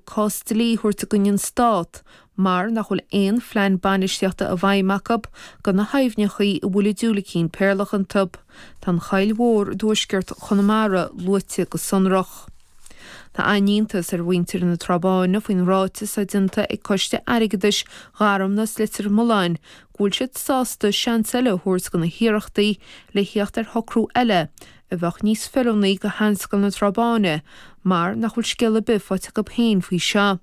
cás dlí a thabhairt i gcoinne an Stát mar nach bhfuil aon phlean bainistíochta i bhfeidhm acu do na haibhneachaí a bhfuil an diúilicín péarlach iontu. Tá an Choill Mhór i dtuaisceart Chonamara luaite go sonrach. Tá an-iontas ar mhuintir na Trá Báine faoin ráiteas atá déanta ag Coiste Airgeadais Gharmna is Leitir Mealláin go bhfuil siad sásta seans eile a thabhairt do na hiarrachtaí le theacht ar shocrú eile a bheadh níos feiliúnaí go Sheanscoil na Trá Báine mar nach bhfuil scéal ar bith faighte acu féin faoi seo.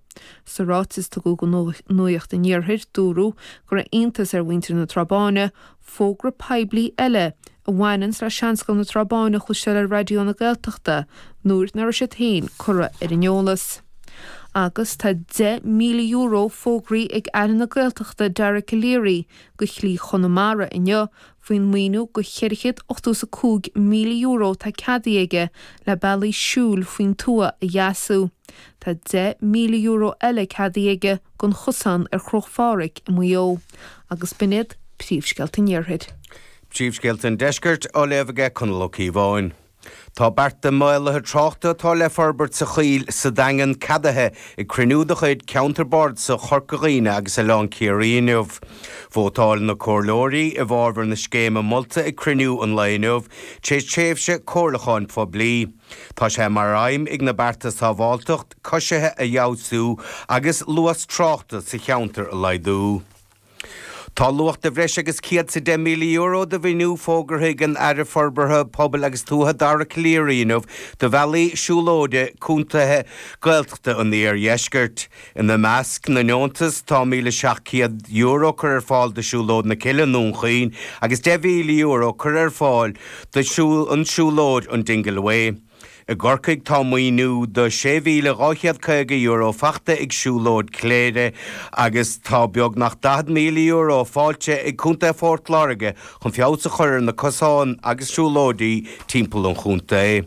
Sa ráiteas a tugadh go Nuacht an Iarthair, dúradh go raibh iontas ar mhuintir na Trá Báine fógra poiblí eile a bhaineann le Seanscoil na Trá Báine a chloisteáil ar Raidió na Gaeltachta nuair nach raibh siad féin curtha ar an eolas. Agus tá €10,000 fógraithe ag Aire na Gaeltachta Dara Calleary do Shlí Chonamara inniu Faoin maoiniú go €485,000 atá ceadaithe aige le bealaí siúil faoin tuath a dheasú, tá €10,000 eile ceadaithe aige don chosán ar Chruach Phádraig i Maigh Eo. Agus b'in iad príomhscéalta an iarthair. Príomhscéalta an deiscirt á léamh ag Conall Ó Ciobháin. Tá bearta maolaithe tráchta atá le forbairt sa Choill sa Daingean ceadaithe ag cruinniú de chuid Ceantar Bardasach Chorca Dhuibhne agus Oileán Ciarraí inniu. Vótáil na Comhairleoirí i bhfábhar na scéime molta ag cruinniú an lae inniu tar éis tréimhse comhairliúcháin phoiblí. Tá sé mar aidhm ag na bearta sábháilteacht coisithe a fheabhsú agus luas tráchta sa cheantar a laghdú. Tá luach de bhreis agus €110,000 do mhaoiniú fógartha ag an Aire Forbartha Pobail agus Tuaithe Dara Calleary inniu do bhealaí siúlóide contaetha Gaeltachta an iardheiscirt. Ina measc na ndeontas tá €1,700 curtha ar fáil do Siúlóid na Cille i nDún Chaoin agus €10,000 curtha ar fáil don siúlóid an Dingle Way. I gCorcaigh tá maoiniú do €6,250 faighte ag Siúlóid Chléire agus tá beagnach €40,000 faighte ag Contae Phort Láirge chun feabhas a chur ar na cosáin agus siúlóidí timpeall an chontae.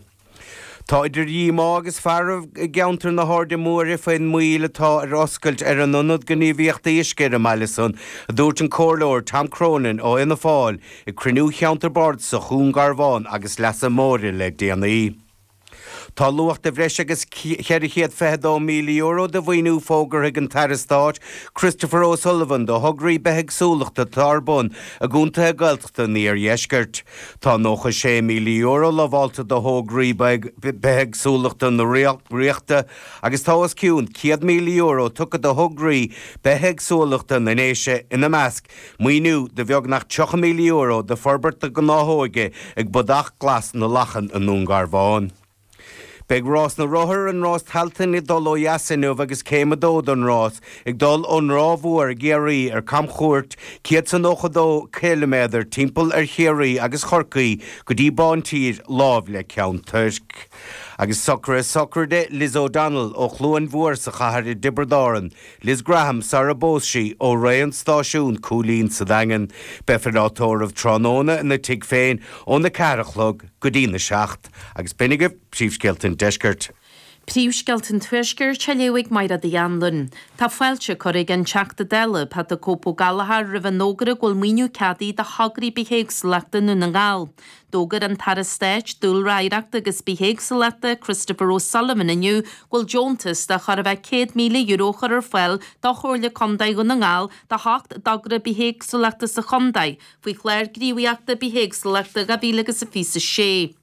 Tá idir dhíomá agus fearg i gceantar na hAirde Móire faoin moill atá ar oscailt ar an Ionad Gníomhaíochtaí Uisce ar an mbaile san, a dúirt an Comhairleoir Tom Cronin ó Fhianna Fáil. Ag cruinniú Cheantar Bardasach Dhún Garbhán agus Leasa Móire le déanaí. Tá luach de bhreis agus €422,000 de mhaoiniú fógartha ag an tAire Stáit Christopher O'Sullivan do thograí bithéagsúlachta atá ar bun i gcontaetha Gaeltachta an iardheiscirt. Tá €96,000 lamhálta do thograí bithéagsúlachta na Ríochta agus tá os cionn €100,000 tugtha do thograí bithéagsúlachta na nDéise, ina measc, Maoiniú de bheagnach €30,000 d'fhorbairt na gnáthóige ag Bodach Glas na Lachan i nDún Garbhán. Beidh Rás na Rothar an Rás Tailteann ag dul ó dheas inniu agus Céim 2 don rás ag dul ón Ráth Mhór i gCiarraí ar camchuairt 192 km timpeall ar Chiarraí agus Corcaigh go dtí Bán Tír láimh le Ceann Tuirc. Agus socrú sochraide Liz O'Donnell ó Chluain Mhór sa chathair i dTiobrad Árann, Liz Graham sarar phós sí, ó Raon, Stáisiún Chúilín sa Daingean. Beifear á tórramh tráthnóna ina tigh féin óna ceathair a chlog go dtí na seacht. Agus b'shin agaibh Príomhscéalta an Deiscirt. Príomhscéalta an Tuaiscirt á léamh ag Máire T. Ní Dhonnabháin. Tá fáilte á cur ag an Teachta Dála, Pat 'The Cope' Ó Gallchóir roimh an fhógra go bhfuil maoiniú ceadaithe do thograí bithéagsúlachta i nDún na nGall. D'fhógair an tAire Stáit Dúlra Oidhreachta agus Bithéagsúlachta, Christopher O'Sullivan inniu go bhfuil deontas de chor a bheith €100,000 á chur ar fáil do Chomhairle Contae Dhún na nGall d'ocht dtogra bithéagsúlachta sa chontae faoi Chlár Gníomhaíochta Bithéagsúlachta 2026.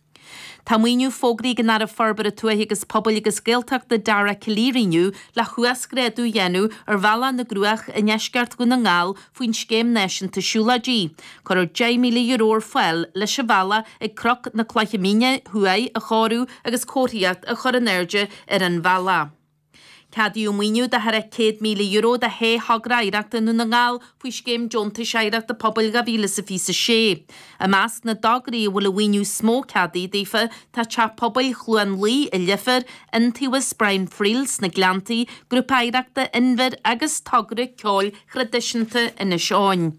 Tá maoiniú fógraithe ag an Aire Forbartha Tuaithe agus Pobail agus Gaeltachta Dara Calleary inniu le huasghrádú a dhéanamh ar Bhealach na gCruach i ndeisceart Dhún na nGall faoin Scéim Náisiúnta Siúlóidí. Cuireadh €10,000 ar fáil leis an bhealach ag Cnoc na Cloiche Míne Thuaidh a chóiriú agus comharthaíocht a chur in airde ar an bhealach. Ceadaíodh maoiniú de thar €100,000 do shé thogra oidhreachta i nDún na nGall faoi Scéim Deontais Oidhreachta Pobail 2026. I measc na dtograí a bhfuil an maoiniú is mó ceadaithe daofa tá Teach Pobail Chluain Lao i Leifear, Iontaobhas Brian Friel sna Gleanntaí, Grúpa Oidhreachta Inbhir agus togra ceoil traidisiúnta Inis Eoghain.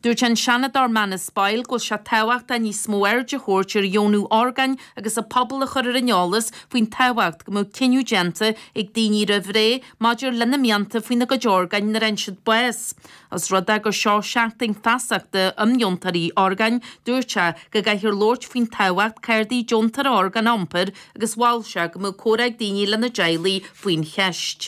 Dúirt an Seanadóir Manus Boyle go bhfuil sé tábhachtach níos mó aird a thabhairt ar dheonú orgáin agus an pobal a chur ar an eolas faoin tábhacht go mbeadh cinneadh déanta ag daoine roimh ré maidir lena mianta faoina gcuid orgáin nuair a fhaigheann siad bás. Os rud é gur seo Seachtain Feasachta um Dheontóirí Orgáin, dúirt sé go gcaithfear labhairt faoin tábhacht cártaí deontóra orgán a iompar agus mhol sé go mbeadh comhrá ag daoine lena dteaghlaigh faoin cheist.